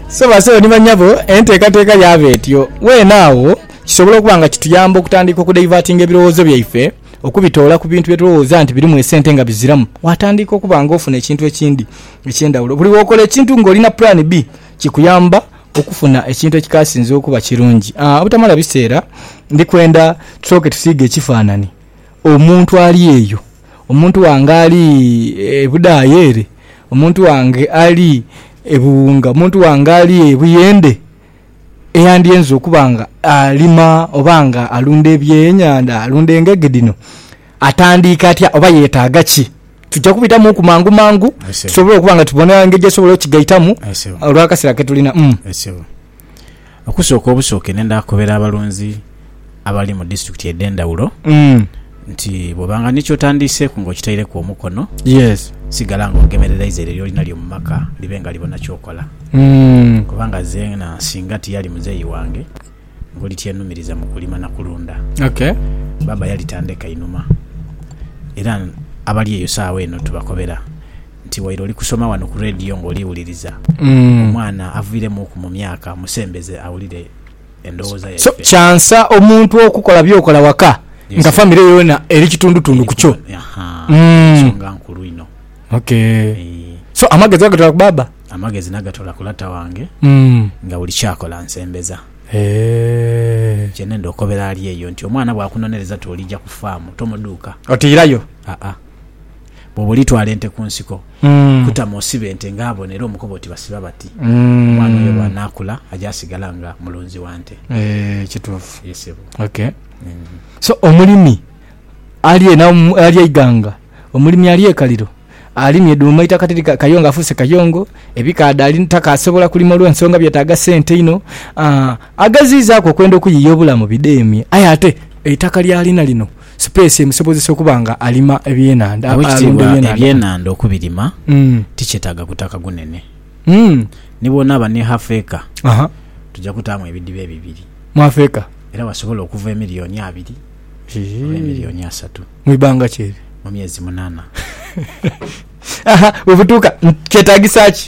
So basebo ni banyabo, enteekateeka yaaba etyo. Weena agho, kisobola okuba nga kituyamba okutandika okudaivatinga ebirowoozo byaife okubitoola ku bintu bye tulowooza nti birimu esente nga biziramu, waatandiika okuba nga ofuna ekintu ekindi eky'endhawulo. Buli wookola ekintu ng'olina pulaani B, kikuyamba okufuna ekintu ekikaasinze okuba kirungi. Obutamala biseera, ndi kwenda tusooke tusiige ekifaananhi. omuntu ali eyo, omuntu wange ali e Budhaaya ere, omuntu wange ali e Buwunga, omuntu wange ali e Buyende eyandyenze okuba nga alima oba nga alunda ebyenhandha, alunda engege dhino, atandiike atya oba yetaaga ki? Tuja kubitamuuku mangumangu tusobole okuba nga tubona engeri gye tusobola okukigaitamu olw'akaseera ke tulina. Okusooka obusooke nendha kukobera abalunzi abali mu disiturikiti edh'endhawulo nti bwobanga ni kyotandiiseku nga okitaireku omukono sigala nga ogemerereiza eryo lyolinalyo mu maka libe nga libona kyokola kubanga zeena singa tiyali muzeeyi wange ngoli tyenumiriza mu kulima na kulunda. Baaba yalitandeka inhuma era abali eyo saagha eno tubakobera. nti waire oli kusoma wano ku Radio nga oli wuliriza, omwana aviiremuuku mu myaka musembeze awulire endowooza yaife. So kyansa omuntu okukola byokola waka nga famire yoona eri kitundutundu ku kyo. Nsonga nkulu inho. Okay. So amagezi ogatola ku baaba? Amagezi nagatola ku lata wange nga buli kyakola ansembeza. Kyenenda okobera ali eyo nti omwana bwakunonereza ti olija ku faamu tomudhuuka. Otiirayo? Aa. Bwoba olitwala ente ku nsiko, kutama osibe ente ng'abona era omukobe oti basiba bati. Omwana oyo bw'anaakula aja asigala nga mulunzi wa nte. Eeh, kituufu. Ye ssebo. Ok. So, omulimi ali eno ali eighanga, omulimi ali e Kaliro, alimye dhuuma eitaka tiri kayongo, afuuse kayongo, ebikaadha ali takaasobola kulima olw'ensonga byetaaga sente inho. Ageziizaaku okwenda okuyiiya obulamu bidheemye aye ate eitaka ly'alina lino Sipeesi emusobozesa okuba nga alima ebyenhandha, alunda ebyenhandha. Owekitiibwa, ebyenhandha okubirima tikyetaaga gutaka gunene. Ni bw'onaaba ni hafu eka, tuja kutaamu ebidiba ebibiri. Mu hafu eka? Era wasobola okuva emiliyoni abiri oba emiliyoni asatu. Mu ibanga ki eryo? Mu myezi munaana. Aha, bwe butuuka, kyetaagisa ki?